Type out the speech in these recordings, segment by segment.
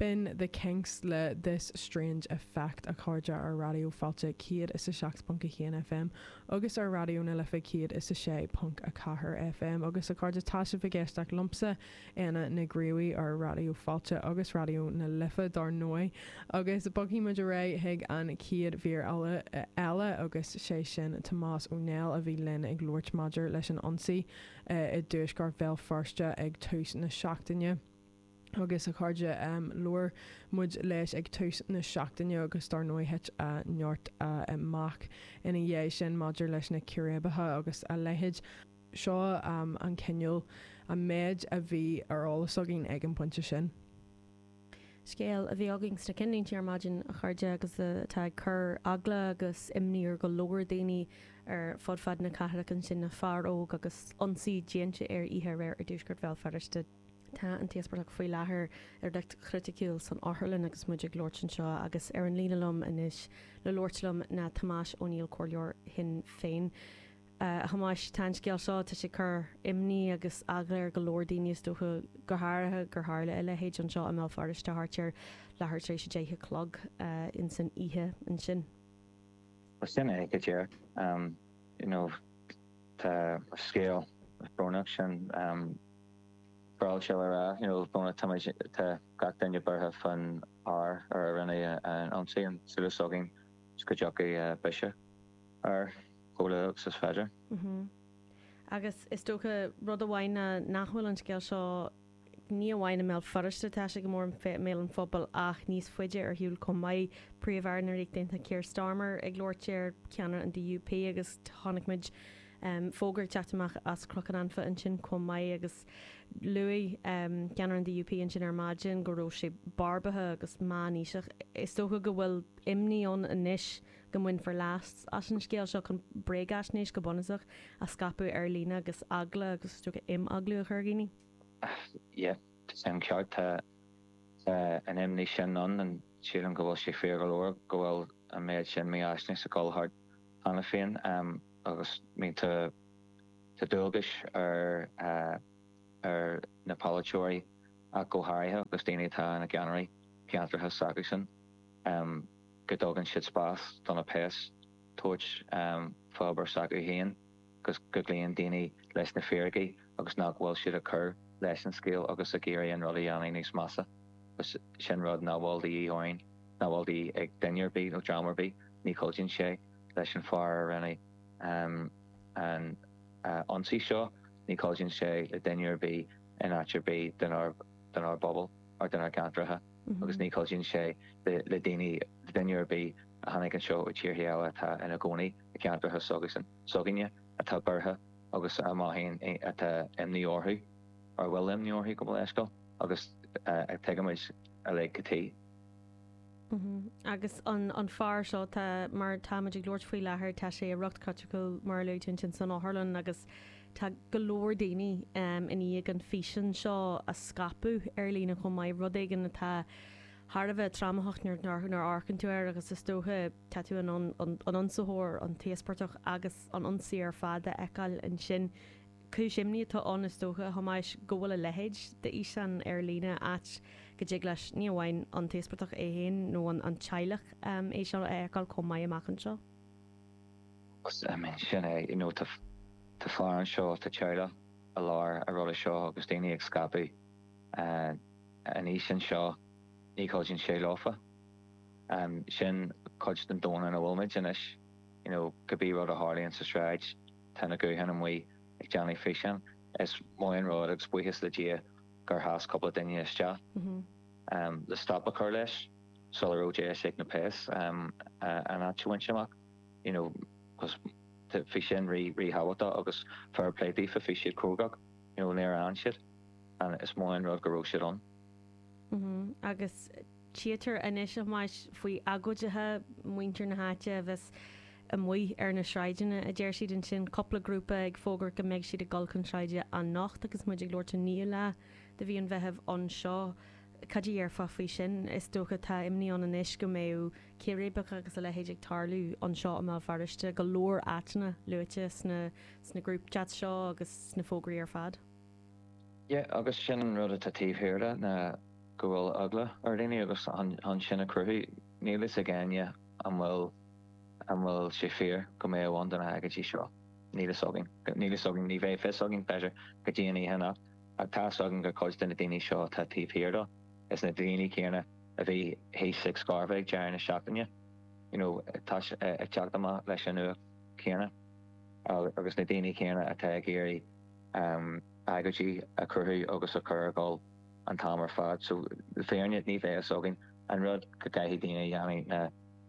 B'in The Kinks le This Strange Effect, a chairde, ar Raidió Fáilte 107.1 FM agus ar Raidió na Life 106.4 FM, agus a chairde, tá sibh ag éisteacht liomsa, Éanna na gCraobhaí, ar Raidió Fáilte agus Raidió na Life, dár ndóigh, agus bogfaidh muid ar aghaidh chuig an chéad mhír eile, agus sé sin Tomás Ó Néill, a bhí linn ag labhairt maidir leis an ionsaí i dtuaisceart Bhéal Feirste ag tús na seachtaine. agus a chairde. Labhair muid leis ag tús na seachtaine agus dár ndóigh thit neart amach ina dhiaidh sin maidir leis na círéibeacha agus a leithéid. Seo an cineál méid a bhí ar eolas againn ag an bpointe sin. Scéal a bhí againn sna cinnlínte ar maidin, a chairde, agus atá ag cur eagla agus imní ar go leor daoine ar fud fad na cathrach ansin, fear óg agus ionsaí déanta air oíche aréir i dtuaisceart Bhéal Feirste. Tá an t-íospartach faoi láthair i riocht criticiúil san otharlann agus muid ag labhairt anseo agus ar an líne liom anois le labhairt liom ná Tomás Ó Neill Comhairleoir Shinn Féin. A Thomáis, tá an scéal seo, tá sé ag cur imní agus eagla ar go leor daoine is dócha, go háirithe gur tharla a leithéid anseo i mBéal Feirste thart ar leathuair tar éis a deich a chlog insan oíche ansin. Bhuel sin é go díreacht. You know tá scéal brónach sin. Ba mhaith liom a rá, you know, muna táimid, tá gach duine buartha fán fhear ar a rinneadh an t-ionsaí, an súil s'againn 's go dtiocfaidh biseadh air chomh luath 's is féidir. Agus is dócha, rud amháin ná nach bhfuil an scéal seo, ní amháin i mBéal Feirste atá sé go mór i mbéal an phobail ach níos faide ar shiúl chomh maith, Príomh-Aire na Ríochta Aontaithe Keir Starmer ag labhairt air, ceannaire an DUP agus chonaic muid, fógra ag teacht amach as Cnoc an Anfa ansin chomh maith agus luaigh ceannaire an DUP ansin ar maidin go raibh sé barbartha agus meánaoiseach. Is dócha go bhfuil imní ann anois go mbainfear leas as an scéal seo chun bréagaisnéis, go bunúsach, a scaipeadh ar líne agus eagla agus is dócha imeaglú a chur ar dhaoine. Yep, is é an ceart, tá an imní sin ann and sílim go bhfuil sé fíor go leor go bhfuil an méad sin mífhaisnéise ag dul thart cheana féin. agus bíonn dualgas ar na polaiteoirí ach go háirithe agus daoine atá ina gceannairí i gceantracha s'acusan go dtugann siad spás do na péas tabhairt fán obair s'acu féin agus go gcloíonn daoine leis na fíricí agus nach bhfuil siad ag cur leis an scéal agus ag iarraidh an rud a dhéanamh níos measa. Sin rud nach bhfuil de dhíth orainn, nach bhfuil de dhíth ag duine ar bith nó dream ar bith, ní chuidíonn sé. leis an fear a rinne an t-ionsaí seo, ní chuidíonn sé le duine ar bith in áit ar bith denár bpobal nó denár gceantracha agus ní chuidíonn sé le daoine, le duine ar bith a tháinig anseo ó tíorthaí eile atá ina gcónaí i gceantracha seo againne atá buartha agus a mothaíonn atá imní orthu nó a bhfuil imní orthu gabh mo leithscéal agus tuigimid uilig cad tuige. Agus an fear seo, tá, mar táimid ag labhairt faoi láthair tá sé i riocht criticiúil, mar a luaigh tú ansin, san otharlann agus tá go leor daoine i ndiaidh an físeán seo a scaipeadh ar líne chomh maith, rud éigin atá thar a bheith trámaitheach nuair a amharcann tú air agus is dócha, tá tú an ionsaitheoir, an t-íospartach agus an ionsaí ar fad a fheiceáil ansin. Cúis imní atá ann is dócha, a Thomáis, go bhfuil a leithéid de fhíseán ar líne áit go dtig leis, ní amháin an t-íospartach é féin nó an teaghlach, é seo a fheiceáil chomh maith amach anseo. Sin é, you know, tá fear anseo, tá teaghlach i lár an ruda seo agus daoine ag scaipeadh an fhíseáin seo, ní chuidíonn sé leofa. Sin cuid den domhan ina bhfuilmid anois, you know, cibé rud a tharlaíonn sa tsráid, Tá na gutháin amuigh ag déanamh físeáin. Is maith an rud agus buíochas le Dia gur sheas cúpla duine isteach le stop a chur leis sula raibh deis ag na péas an áit a bhaint amach. You know, bhí sin ríthábhachtach agus fair play daofa, bhí siad crógach, you know, níor fhan siad and is maith an rud go raibh siad ann. Agus Tchítear anois a Thomáis faoi agóidithe, muintir na háite a bheas amuigh ar na sráideanna, a deir siad ansin, cúpla grúpa ag fógairt go mbeidh siad ag dul chun sráide anocht agus muid ag labhairt an naoú lá de mhí an Mheithimh anseo. Caidé a déarfá faoi sin? Is dócha tá imní ann anois go mbeidh círéibeacha agus a leithéid ag tarlú anseo i mBéal Feirste, go leor áiteanna luaite sna sna groupchats seo agus sna fógraí ar fad. Yeah, agus sin an rud atá taobh thiar de, ná go mbeidh eagla ar dhaoine agus chun sin a chruthú, níl fhios ag éinne an bhfuil, an bhfuil sé fíor go mbeidh ann do na hagóidí seo, níl fhios againn, níl fhios againn, ní bheidh fios againn, b'fhéidir, go dtí an oíche anocht, ach tá fhios againn go bhfuil cuid de na daoine seo atá taobh thiar de, is iad na daoine céanna a bhí thíos ag Scarva ag deireadh na seachtaine, you know, tá siad ag teacht amach leis an nuacht céanna agus na daoine céanna atá ag iarraidh. agoidí a chruthú agus a chur ag gabháil an t-am ar fad so le fírinne ní bheidh fhios againn an rud go gcaithfidh daoine a dhéanamh na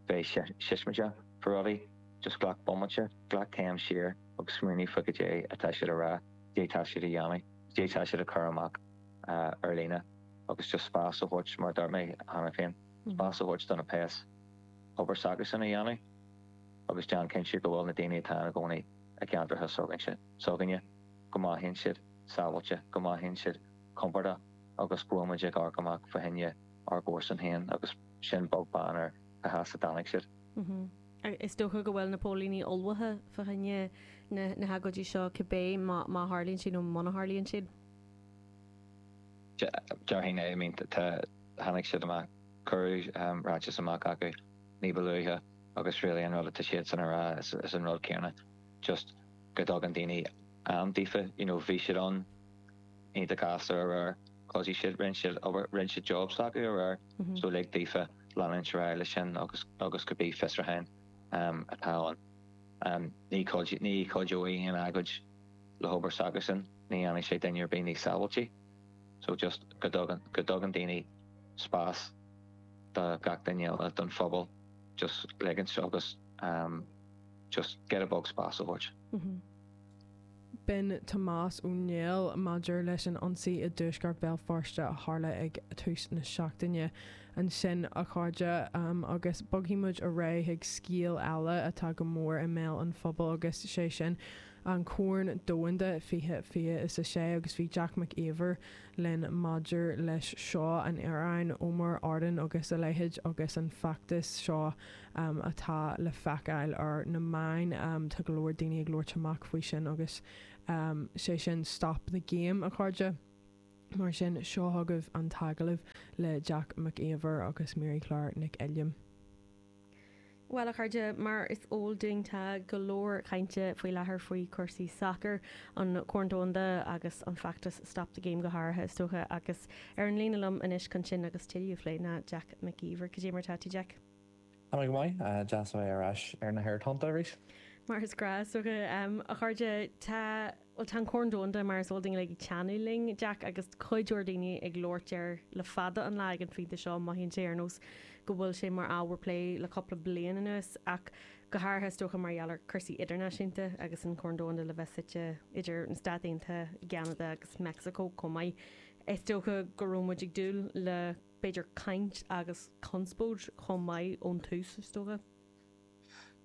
bheith siosmaideach fá rudaí just glac bomaite, glac céim siar agus smaoinigh fá go dé atá siad a rá, go dé tá siad a dhéanamh, go dé tá siad a chur amach ar líne agus just spás a thabhairt mar a dúirt mé cheana féin, spás a thabhairt do na péas an obair s'acusan a dhéanamh agus déan cinnte go bhfuil na daoine atá ann i gcónaí i gceantracha s'againne. s'againne, go mothaíonn siad sábháilte, go mothaíonn siad compordach agus go bhfuil muid ag amharc amach fá choinne ár gcomharsan féin agus sin beag beann ar cá has a dtáinig siad. Is dócha go bhfuil na póilíní ullmhaithe fá choinne na hagóidí seo cibé, má tharlaíonn siad nó muna tharlaíonn siad. Déarfainn é. I mean tháinig siad amach, cuireadh ráiteas amach acu ní ba luaithe agus really an rud atá siadsan a rá ná is an rud céanna. just go dtugann daoine am daofa, you know bhí siad ann iontach gasta aréir thoisigh siad, rinne siad obair, rinne siad job s'acu aréir so lig daofa leanúint ar aghaidh leis sin agus agus cibé fiosrúchán atá ann and ní cuideoidh, ní chuideoidh aon agóid le hobair s'acusan, ní dhéanfaidh sé duine ar bith níos sábháiltí so just go dtagann, go dtugann daoine spás do gach duine eile den phobal just ligint agus. just giota beag spáis a thabhairt. B'in Tomás Ó Néill maidir leis an ionsaí i dtuaisceart Bhéal Feirste a tharla ag tús na seachtaine. Ansin, a chairde, agus bogfaidh muid ar aghaidh chuig scéal eile atá go mór i mbéal an phobail agus sé sin an Corn Domhanda 2026 agus bhí Jack Mac Íomhair, linn maidir leis seo an réiteoir, Omar Artan agus a leithéid, agus an feachtas seo atá le feiceáil ar na meáin, tá go leor daoine ag labhairt amach faoi sin agus sé sin Stop the Game, a chairde. Mar sin, seo chugaibh an t-agallamh le Jack Mac Íomhair agus Méirí Clár Nic Uilliam. Bhuel, a chairde, mar is eol dúinn tá go leor cainte faoi láthair faoi chúrsaí sacair, an Corn Domhanda agus an feachtas Stop the Game go háirithe, is dócha. Agus ar an líne liom anois chun sin agus tuilleadh a phlé ná Jack Mac Íomhair. Cad é mar atá tú, Jack? Tá mé go maith. Deas a bheith ar ais ar na haerthonnta arís. Mar is gnáth. Is dócha, a chara, tá. Bhuel, tá an Corn Domhanda, mar is eol dúinn uilig, ag teannadh linn, Jack, agus tá cuid mhór daoine ag labhairt air le fada an lá ag an phointe seo. Mothaíonn sé ar nós go bhfuil sé mar ábhar plé le cúpla bliain anuas, ach go háirithe, is dócha, mar gheall ar chúrsaí idirnáisiúnta agus an Corn Domhanda le bheith suite idir na Stáit Aontaithe, Ceanada agus Meicsiceo chomh maith. Is dócha go raibh muid ag dúil le, b'fhéidir, caint agus conspóid chomh maith ón tús, is dócha.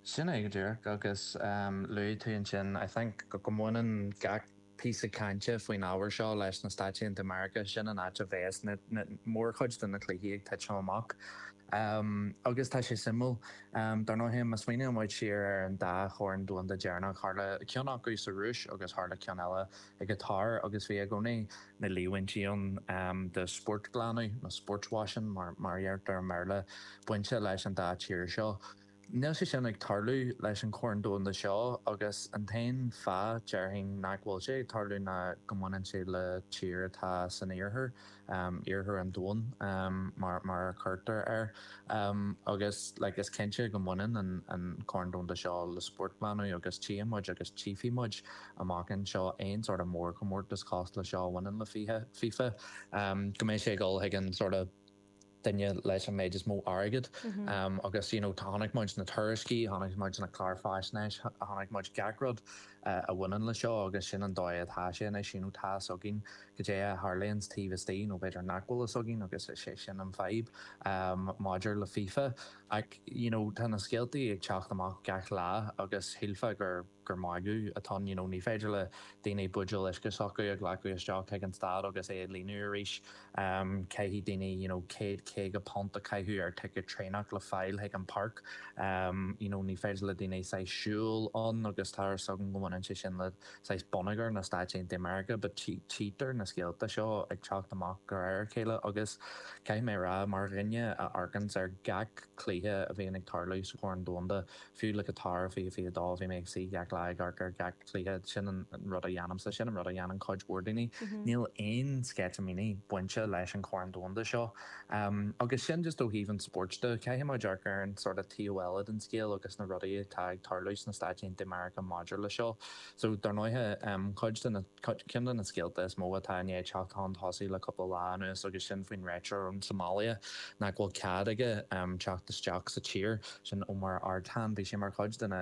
Sin é go díreach, agus luaigh tú ansin, I think, go mbaineann gach píosa cainte faoin ábhar seo leis na Stáit Aontaithe Meiriceá, sin an áit a bheas mórchuid de na cluichí ag titim amach. Agus tá sé suimiúil, dar ndóigh, má smaoiníonn muid siar ar an dá Chorn Domhanda deireanach, tharla ceann acu sa Rúis agus tharla ceann eile i gCatar agus bhí i gcónaí na líomhaintí ann de spórtghlanadh, nó sportswashing mar a dheirtear i mBéarla, bainte leis an dá thír seo. Níl sé sin ag tarlú leis an Chorn Domhanda seo agus an t-aon fáth, déarfainn, nach bhfuil sé ag tarlú ná go mbaineann sé le tír atá san iarthar. iarthar an domhain mar a chuirtear air agus like is cinnte go mbaineann an Corn Domhanda seo le spórtghlanadh agus tchífidh muid agus tchífidh muid amach anseo aon sort of mórchomórtas cosúil le seo a bhaineann le FIFA go mbeidh sé ag dul chuig an sort of duine leis an méid is mó airgid agus you know chonaic muid na tuairiscí, chonaic muid na cláir faisnéis, chonaic muid gach rud a bhaineann leis seo agus sin an dóigh atá sé anois, you know tá fhios againn goidé a tharlaíonns taobh istigh nó b'fhéidir nach bhfuil fhios againn agus is é sin an fadhb maidir le FIFA ach you know tá na scéaltaí ag teacht amach gach lá agus shílfeá gur gur magadh atá ann, you know, ní féidir le daoine buidéal uisce s'acu a ghlacadh isteach chuig an staid agus é a líonadh arís, caithfidh daoine, you know, céad caoga punt a chaitheamh ar ticéad traenach le fáil chuig an páirc, you know, ní féidir le daoine saghas siúl ann agus tá fhios agam go mbaineann sé sin le saghas bonneagar na Stáit Aontaithe Meiriceá but tchítear na scéalta seo ag teacht amach de réir a chéile agus caithfidh mé a rá, mar dhuine a amharcanns ar gach cluiche a bhíonn ag tarlú sa Chorn Domhanda, Fiú le Catar fiche fiche dó, bhí mé ag suí gach lá ag amharc ar gach cluiche. Sin an rud a dhéanaimse, sin an rud a dhéanann cuid mhór daoine. Níl aon sceitimíní bainte leis an Chorn Domhanda seo. Agus sin just ó thaobh an spóirt de. Caithfidh muid amharc ar an sort of taobh eile den scéal agus na rudaí atá ag tarlú sna Stáit Aontaithe Meiriceá maidir leis seo. So, dar ndóighe, cuid de na, ceann de na scéalta is mó atá i ndiaidh teacht chun tosaigh le cúpla lá anuas agus sin faoin réiteoir ón tSomáilia nach bhfuil cead aige teacht isteach sa tír, sin Omar Artan. Bhí sé mar chuid de na,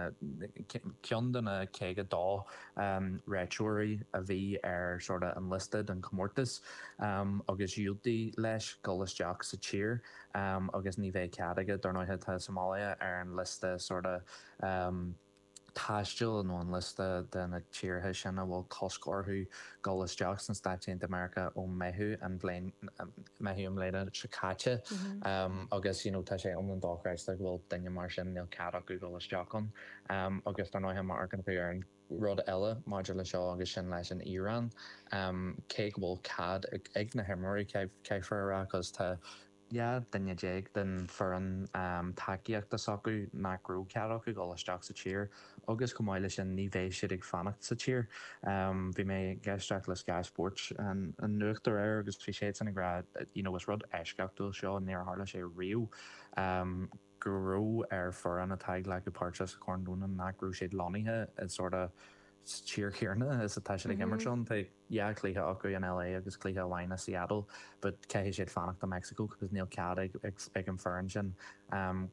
ceann de na caoga dó réiteoirí a bhí ar sort of an liosta don chomórtas agus diúltaíodh leis dhul isteach sa tír agus ní bheidh cead aige, dar ndóighe, tá Somáilia ar an liosta sort of. taistil nó an liosta de na tíortha sin a bhfuil cosc orthu dul isteach sna Stáit Aontaithe Meiriceá ó Mheitheamh an bhliain seo caite agus you know tá sé iomlán dochreidte go bhfuil duine mar sin, níl cead acu dul isteach ann agus dar ndóigh má amharcann tú ar an rud eile maidir le seo agus sin leis an Iaráin cé go bhfuil cead ag na himreoirí caithfear a rá cos tá. 11 duine den foireann tacaíochta s'acu nach raibh cead acu dul isteach sa tír agus chomh maith leis sin ní bheidh siad ag fanacht sa tír. Bhí mé ag éisteacht le Sky Spóirt an nuacht aréir agus bhí siadsan ag rá you know is rud eisceachtúil é seo níor tharla sé riamh. go raibh ar foireann atá ag glacadh páirte sa Corn Domhanda nach raibh siad lonnaithe i sort of tír chéanna is atá siad ag imirt ann. Tá dhá chluiche acu in LA agus cluiche amháin i Seattle but caithfidh siad fanacht i Mexico because níl cead ag ag an foireann sin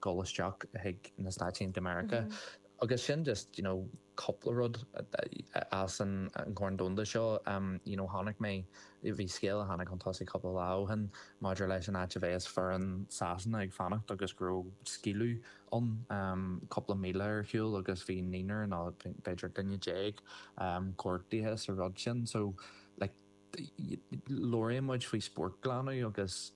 dul isteach chuig na Stáit Aontaithe Meiriceá. Agus sin just, you know. cupla rud as an gCorn Domhanda seo, you know, tháinig mé, bhí scéal a tháinig chun tosaigh cupla lá ó shin maidir leis an áit a bhéas foireann Sasana ag fanacht agus go raibh scaoileadh ann cupla míle ar shiúl agus bhí naonúr nó b'fhéidir aon duine déag gortaithe sa rud sin, so, like, labhraíonn muid faoi spórt glanadh agus.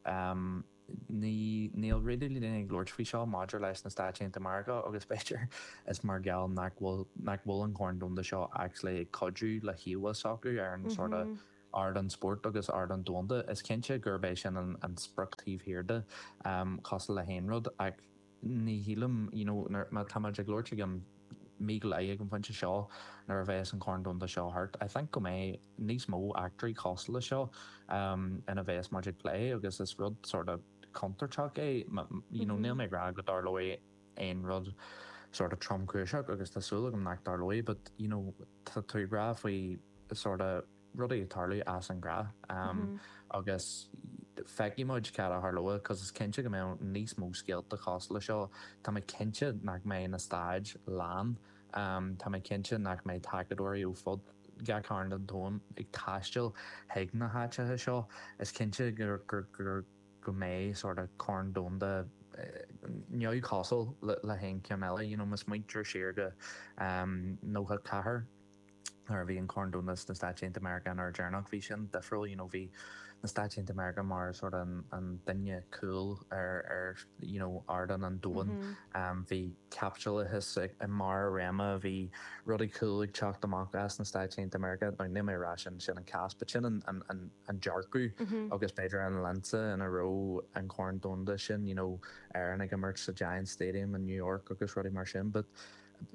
Níl níl really daoine ag labhairt faoi seo maidir leis na Stáit Aontaithe Meiriceá agus b'fhéidir is mar gheall nach bhfuil nach bhfuil an Corn Domhanda seo actually ag cuidiú le híomhá s'acu ar an sort of ardán spóirt agus ardán domhanda. Is cinnte gurb é sin an sprioc taobh thiar de, cosúil le haon rud, ach. Ní shílim, you know, má tá muid ag labhairt i gceann mí go leith ag an phointe seo, nuair a bheas an Corn Domhanda seo thart, I think go mbeidh níos mó eachtraí cosúil leis seo ina bheas muid ag plé agus is rud sort of contúirteach é, you know, níl mé ag rá go dtarlóidh aon rud sort of tromchúiseach agus tá súil agam nach dtarlóidh but, you know, tá tú ag rá faoi sort of. rudaí ag tarlú as an gnáth agus feicfidh muid cad a tharlóidh 'cause is cinnte go mbeidh níos mó scéalta cosúil leis seo, tá mé cinnte nach mbeidh na staid lán, tá mé cinnte nach mbeidh tacadóirí ó fud gach cearn den domhan ag taisteal chuig na háiteacha seo, is cinnte go mbeidh sórt of Corn Domhanda neamhchosúil le haon cheann eile, you know, má smaointear siar go 94. nuair a bhí an Corn Domhanda sna Stáit Aontaithe Meiriceá an uair dheireanach, bhí sin difriúil, you know bhí na Stáit Aontaithe Meiriceá mar sort of an an duine cool ar ar you know ardán an domhain, bhí caipitileachas i i mbarr a réime, bhí rudaí cool ag teacht amach as na Stáit Aontaithe Meiriceá, now níl mé a rá sin sin an cás but sin an an an an dearcadh agus b'fhéidir an lionsa ina raibh an Corn Domhanda sin, you know Éireann ag imirt sa Giants Stadium in New York agus rudaí mar sin but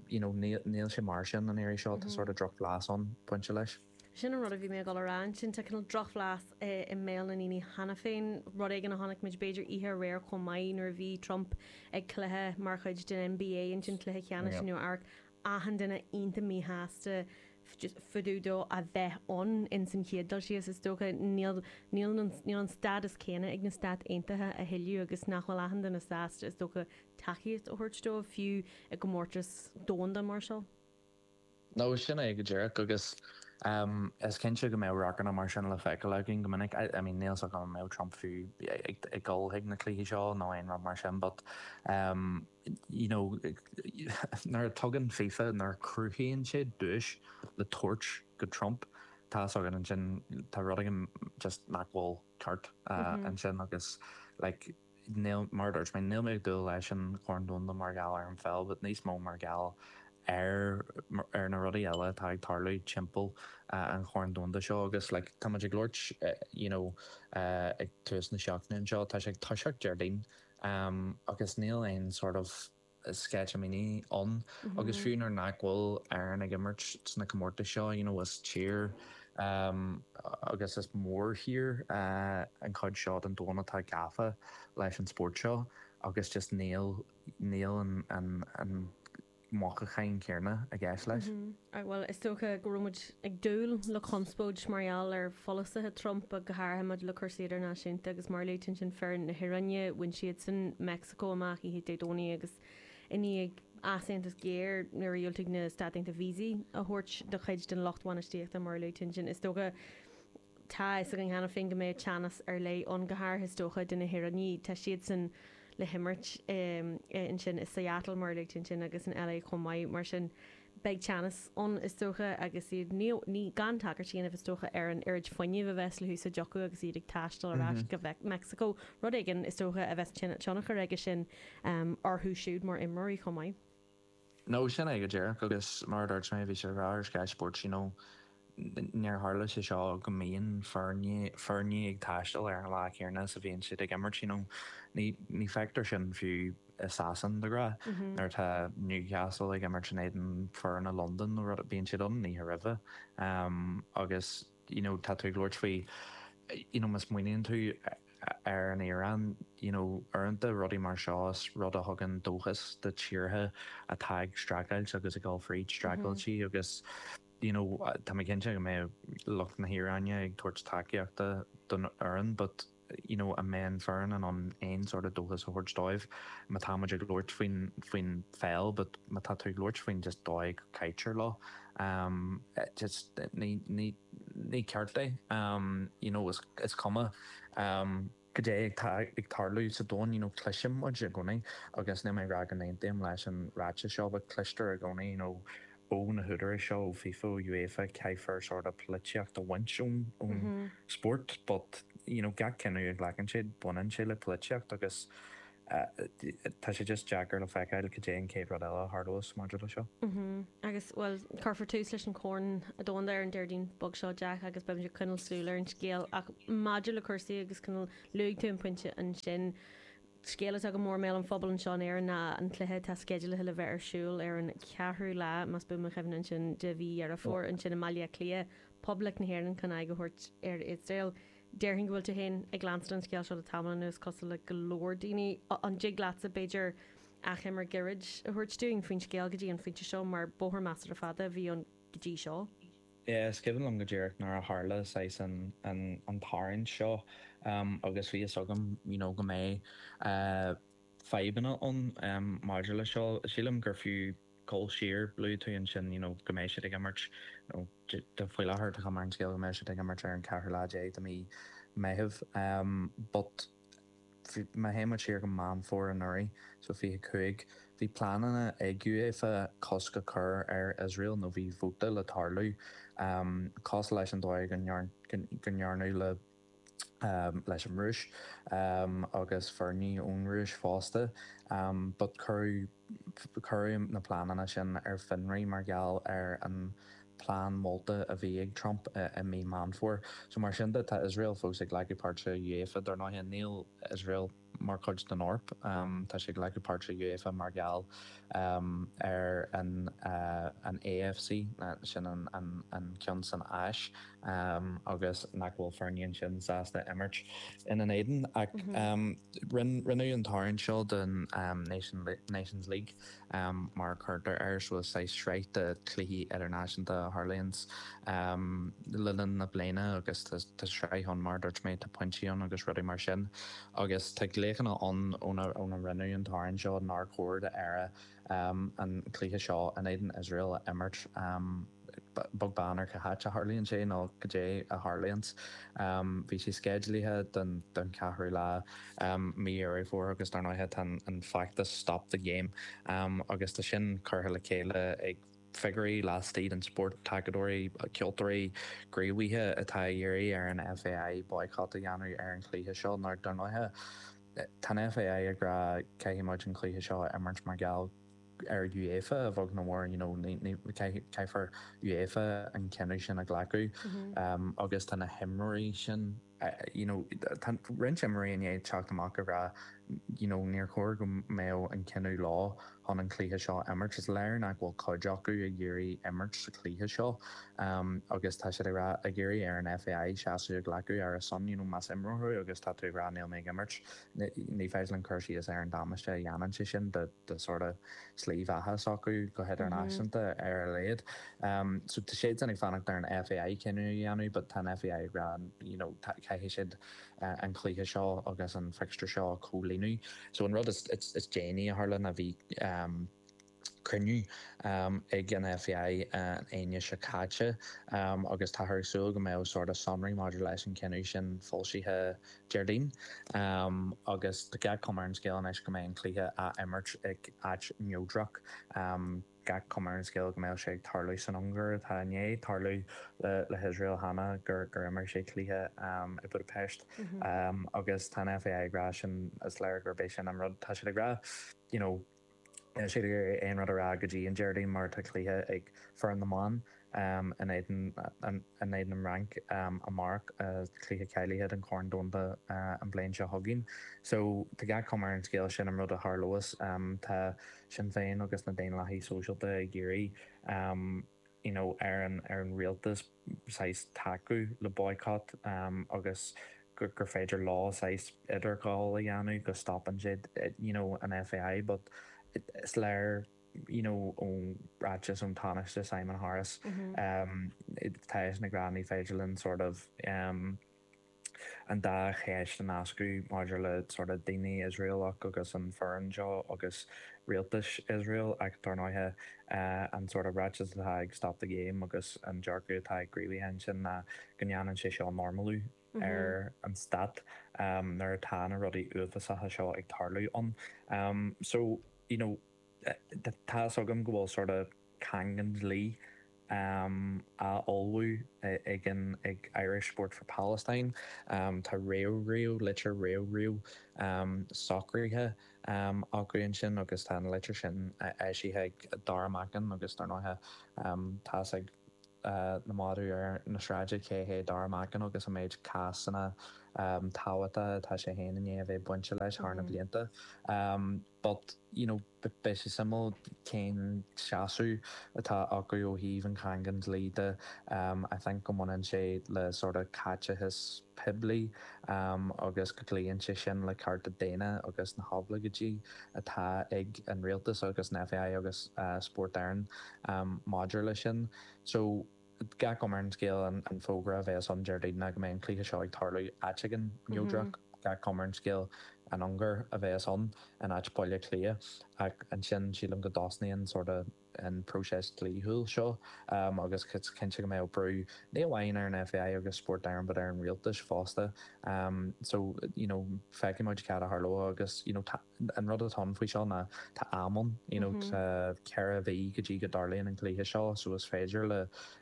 you know níl sé mar sin an iarraidh seo, tá sort of drochbhlas ann, pointe leis. Sin an rud a bhí mé ag dul a rá ansin, tá cineál drochbhlas i mbéal na ndaoine cheana féin, rud éigin a chonaic muid b'fhéidir oíche aréir chomh maith nuair a bhí Trump ag cluiche mar chuid den NBA ansin, cluiche ceannais i Nua Eabharc, achan duine iontach míshásta fá dtaobh dó a bheith ann in san chéad dul síos is dócha, níl níl an stádas céanna ag na Stáit Aontaithe a thuilleadh agus nach bhfuil achan duine sásta is dócha tacaíocht a thabhairt dóibh, fiú i gcomórtas domhanda mar seo. No sin é go díreach, agus is cinnte go mbeadh radharcanna mar sin le feiceáil againn go minic. I mean, níl 's agam an mbeadh Trump fiú ag dul chuig na cluichí seo nó aon rud mar sin but you know nuair a tugann fifa, nuair a chruthaíonn siad duais le tabhairt do Trump, tá 's againn ansin, tá rud éigin just nach bhfuil ceart ansin agus like. níl, mar a dúirt mé, níl mé ag dúil leis an Chorn Domhanda mar gheall ar an pheil but níos mó mar gheall ar, ar na rudaí eile atá ag tarlú timpeall an Chorn Domhanda seo agus like tá muid ag labhairt you know ag tús na seachtaine anseo, tá sé ag toiseacht Déardaoin agus níl aon sort of. sceitimíní ann agus fiú nuair nach bhfuil Éirinn ag imirt sna comórtais seo you know is tír agus is mórthír an chuid seo den domhan atá gafa leis an spórt seo agus just níl níl an an an mothúchán céanna i gceist leis. Right bhuel is dócha go raibh muid ag dúil le conspóid mar gheall ar pholasaithe Trump go háirithe maidir le cúrsaí idirnáisiúnta agus mar a luaigh tú ansin foireann na hIaráine bhain siadsan Mexico amach oíche Dé Domhnaigh agus i ndiaidh easaontas géar nuair a dhiúltaigh na Stáit Aontaithe víosaí a thabhairt do chuid den lucht bhainistíochta mar a luaigh tú ansin, is dócha, tá a fhios againn cheana féin go mbeidh teannas ar leith ann, go háirithe, is dócha, do na hIaránaigh, tá siadsan le himirt ansin i Seattle mar a luaigh tú ansin agus in LA chomh maith, mar sin. beidh teannas ann, is dócha, agus iad, ní, ní, gan tagairt a dhéanamh, is dócha, ar an oiread fuinnimh a bheas le húsáid acu agus iad ag taisteal ar ais go Mheic, Mexico, rud éigin, is dócha, a bheas tine, tionchar aige sin orthu siúd mar imreoirí chomh maith. No, sin é, go díreach, agus mar a dúirt mé, bhí siad ag rá ar Sky Sports, you know, Ní tharlaíonn sé seo go mbíonn foirne ag taisteal ar an lá céanna is a bhíonn siad ag imirt. Ní feictear sin fiú i Sasain, de ghnáth, nuair atá Newcastle ag imirt in éadan foirne Londan nó rud, bíonn siad ann an oíche roimhe. Agus you know tá tú ag labhairt faoi you know má smaoiníonn tú ar an Iaráin, you know uaireanta rudaí mar seo is rud a thugann dóchas do tíortha atá ag streachailt agus ag dul fríd streachailtí agus, you know tá mé cinnte go mbeidh lucht na hIaráine ag tabhairt tacaíochta don fhoireann but you know an mbeidh an foireann in ann aon sort of dóchas a thabhairt dóibh má tá muid ag labhairt faoin faoin pheil but má tá tú ag labhairt faoin just dóigh a gcaitear leo um just ní ní ní ceart é um you know is is cuma um cad é atá ag tarlú sa domhan you know cloiseann muid i gcónaí agus níl mé ag rá go n-aontaím leis an ráiteas seo but cloistear i gcónaí you know ó na húdaráis seo, ó FIFA, ó UEFA, caithfear sort of polaitíocht a bhaint ón ón spórt but you know gach cinneadh a ghlacann siad baineann sé le polaitíocht agus Tá sé just deacair le feiceáil cad é an chéad rud eile a tharlós maidir le seo. Agus, bhuel, cuirfear tús leis an Corn Domhanda ar an Déardaoin beag seo, Jeaic, agus beimid ag coinneal súil ar an scéal ach maidir le cúrsaí agus cineál, luaigh tú an pointe ansin, scéal atá go mór i mbéal an phobail anseo in Éirinn ná an cluiche atá sceidealaithe le bheith ar siúl ar an cheathrú lá, más buan mo chuimhne ansin, de mhí Dheireadh Fómhair ansin i mBaile Átha Cliath, Poblacht na hÉireann chun aghaidh a thabhairt ar Iosrael. Déarfainn go bhfuil tú féin ag leanstan an scéal seo le tamall anuas, cosúil le go leor daoine. An dtig leatsa, b'fhéidir, achoimre gairid a thabhairt dúinn faoin scéal go dtí an pointe seo, mar bóthar measartha fada a bhí ann go dtí seo. Yeah, is cuimhin liom go díreach nuair a tharla saghas an, an, an tarraingt seo agus bhí fhios agam, you know, go mbeadh fadhbanna ann maidir le seo. Sílim gur fiú. gabháil siar, luaigh tú ansin you know go mbeidh siad ag imirt nó de faoi láthair tá cuma ar an scéal go mbeidh siad ag imirt ar an ceathrú lá déag de mhí Meitheamh em but bhí, má théann muid siar go Meán Fómhair anuraidh so fiche cúig, bhí pleananna ag UEFA cosc a chur ar Iosrael nó bhí vóta le tarlú em cosúil leis an dóigh go ndearnadh le leis an Rúis, agus foirne ón Rúis fosta, but cuireadh, cuireadh na pleananna sin ar fionraí mar gheall ar an plean molta a bhí ag Trump i mí Meán Fómhair. So mar sin de, tá Iosrael fós ag glacadh páirt i UEFA, dar ndóighe, níl Iosrael, mar chuid den Eoraip. Tá sé ag glacadh páirt i UEFA mar gheall ar an AFC, sin an ceann san Áis, agus nach bhfuil foirne ansin sásta imirt ina n-éadan. Ach rinneadh an tarraingt seo don Nations League. mar a chuirtear air, bhfuil saghas sraith de chluichí idirnáisiúnta a tharlaíonn le linn na bliana agus tá sraith ann mar a dúirt mé, tá pointí ann agus rudaí mar sin agus tá glaochanna ann ó rinneadh an tarraingt seo nár chóir d'Éire an cluiche seo in éadan Iosrael a imirt. beag beann ar cá háit a tharlaíonn sé nó goidé a tharlaíonns. Bhí sé sceidealaithe don cheathrú lá mí Dheireadh Fómhair agus dar ndóighe tá an feachtas Stop the Game agus tá sin curtha le chéile ag figiúirí laistigh den spórt, tacadóirí, ceoltóirí, gníomhaithe atá ag iarraidh ar an FAI boycott a dhéanamh ar an chluiche seo nuair dar ndóighe tá an FAI ag rá caithfidh muid an cluiche seo a imirt mar gheall ar UEFA a bheag nó a mhór nó caithfear UEFA an cinneadh sin a ghlacadh agus tá na himreoirí sin you know tá roinnt imreoirí i ndiaidh teacht amach ag rá you know níor chóir go mbeadh an cinneadh leo chun an cluiche seo a imirt is léir nach bhfuil cuid acu ag iarraidh imirt sa chluiche seo agus tá siad ag rá ag iarraidh ar an FAI seasamh a ghlacadh ar a son you know más imreoir thú agus tá tú ag rá níl mé ag imirt ní féidir linn cur síos ar an damáiste a dhéanann sé sin do den sort of slí bheatha s'acu go hidirnáisiúnta ar a laghad. So tá siad sin ag fanacht ar an FAI cinneadh a dhéanamh but tá an FAI ag rá you know tá, caithfidh siad an cluiche seo agus an fixture seo a chomhlíonadh. So an rud is déanaí a tharla ná bhí cruinniú ag an FAI an Aoine seo caite agus táthar ag súil go mbeadh sort of sonraí maidir leis an gcinneadh sin foilsithe Déardaoin, agus tá gach cuma ar an scéal anois go mbeidh an cluiche á imirt ag áit neodrach. Gach cuma ar an scéal go mbeadh sé ag tarlú san Ungáir, atá i ndiaidh tarlú le hIosrael cheana, gur imir sé cluiche i Budapest. Agus tá an FAI ag rá sin, is léir gurb é sin an rud atá siad ag rá, you know, Níl siad ag iarraidh aon rud a rá go dtí an Déardaoin mar tá cluiche ag foireann na mban in éadan in éadan an Fhrainc amárach, cluiche cáilithe don Chorn Domhanda an bhliain seo chugainn. So, tá gach cuma ar an scéal sin an rud a tharlós. Tá Sinn Féin agus na Daonlathaigh Sóisialta ag iarraidh. you know ar an ar an rialtas saghas tacú le boycott em agus gur gur féidir leo saghas idirghabháil a dhéanamh go stopann siad eh you know an FAI but is léir you know ón ráiteas ón Tánaiste Simon Harris mm hmm em tá seisean ag rá ní féidir linn sort of em an dá cheist a nascadh maidir le sort of daoine Iosraelach agus an fhoireann seo agus rialtas Iosrael ach dar ndóighe an sort of ráiteas atá ag Stop the Game agus an dearcadh atá ag gníomhaithe ansin ná go ndéanann sé seo normalú ar an stát nuair atá na rudaí uafásacha seo ag tarlú ann. So, you know. Tá 'fhios agam go bhfuil sort of caingean dlí á ullmhú ag an ag Irish Sport for Palestine. Tá réamhriail, litir réamhriail socraithe acu ansin agus tá an litir sin eisithe ag Darragh Mackin agus dar ndóighe tá 'fhios ag na madaidh ar an tsráid cé hé Darragh Mackin agus an méid cásanna tábhachtacha atá sé féin i ndiaidh a bheith bainte leis thar na blianta. but, you know, beidh sé suimiúil cén seasamh atá acu ó thaobh an chaingean dlí de. I think go mbaineann sé le sort of caiteachas poiblí agus go gcloíonn sé sin le cearta daonna agus na hoibleagáidí atá ag an rialtas agus an FAI agus Spórt Éireann maidir leis sin. So. Gach cuma ar an scéal an fógra a bhéas ann Déardaoin ná go mbeidh an cluiche seo ag tarlú áit éigin neodrach. Gach cuma ar an scéal an Ungáir a bhéas ann in áit Baile Átha Cliath. Ach ansin sílim go dtosnaíonn sort of an próiseas dlíthiúil seo agus is cinnte go mbeadh brú ní amháin ar an FAI agus Spórt Éireann but ar an Rialtas fosta. So, you know, feicfidh muid caidé a tharlóidh agus, you know, tá. An rud atá ann faoi seo ná tá am ann, you know, tá ceithre mhí go dtí go dtarlaíonn an cluiche seo so is féidir le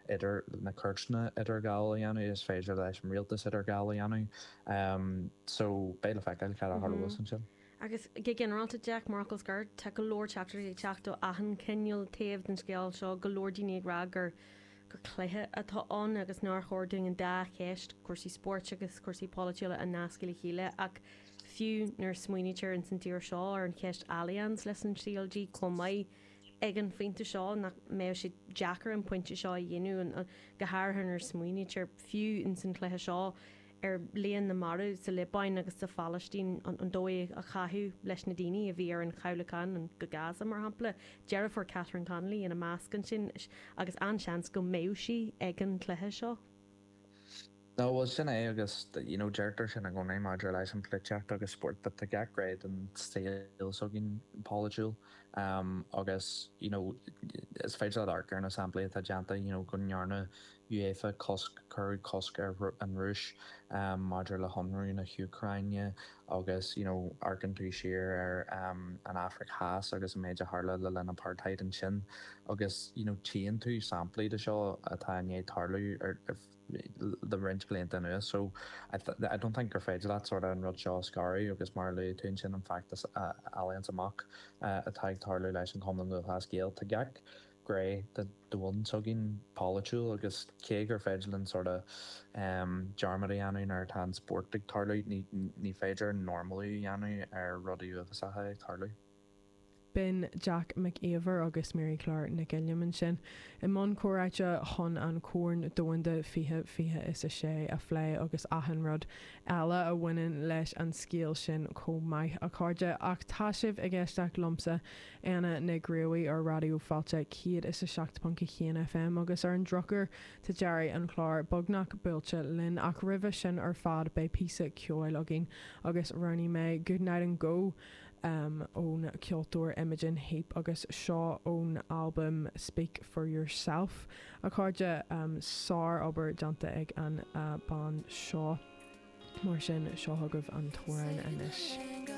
idir, na cúirteanna idirghabháil a dhéanamh, is féidir leis an rialtas idirghabháil a dhéanamh so beidh le feiceáil caidé a tharlós ansin. Agus go ginearálta, Jack, mar fhocal scoir, tá go leor teachtaireachtaí ag teacht ó achan chineál taobh den scéal seo, go leor daoine ag rá gur, gur cluiche atá ann agus nár chóir dúinn an dá cheist, cúrsaí spóirt agus cúrsaí polaitiúla a nascadh le chéile ach, Fiú nuair a smaoinítear ins an tír seo ar an cheist Allianz leis an CLG chomh maith ag an phointe seo, nach mbeadh sé deacair an pointe seo a dhéanamh, go háirithe nuair a smaoinítear, fiú ins an chluiche seo, ar líon na marbh sa Liobáin agus sa Phailistín, an dóigh a caitheadh leis na daoine a bhí ar an chabhlachán go Gaza, mar shampla, deirfiúr Catherine Connolly ina measc ansin, agus an-seans go mbeadh sí ag an chluiche seo. Nó, bhuel, sin é agus, you know, deirtear sin i gcónaí maidir leis an pholaitíocht agus spórt, but tá gach gné don saol s'againn polaitiúil agus, you know, is féidir leat amharc ar na samplaí atá déanta, you know, go ndearna UEFA cosc, cuireadh cosc ar an Rúis maidir le hionradh na hÚcráine agus, you know, amharcann tú siar ar an Afraic Theas agus an méid a tharla le linn apartheid ansin agus, you know, tchíonn tú samplaí de seo atá i ndiaidh tarlú le roinnt blianta anuas. So, I don't think gur féidir leat sort of an rud seo a scaradh agus mar a luaigh tú ansin an feachtas Allianz Amach atá ag tarlú leis an Chumann Lúthchleas Gael, tá gach gné den domhan s'againn polaitiúil agus cé gur féidir linn sort of dearmad a dhéanamh nuair atá an spórt ag tarlú, ní féidir normalú a dhéanamh ar rudaí uafásacha ag tarlú. Bíonn Jack Mac Íomhair agus Máire Chlár Nic Uilliam ansin i mbun comhráite chun an Corn Domhanda fiche fiche is a sé a phlé agus achan rud eile a bhaineann leis an scéal sin chomh maith, a chairde, ach tá sibh ag éisteacht liomsa, Anna Nic Gríobhaigh, ar Raidió Fáilte 107.1 FM agus ar an drochuair tá deireadh an chláir beagnach buailte linn ach roimhe sin ar fad beidh píosa ceoil againn agus roghnaigh mé 'Good Night and Go', ón cheoltóir Imogen Heap agus seo ón albam Speak For Yourself, a chairde. Sár-obair déanta ag an bhean seo, mar sin seo chugaibh an t-amhrán anois.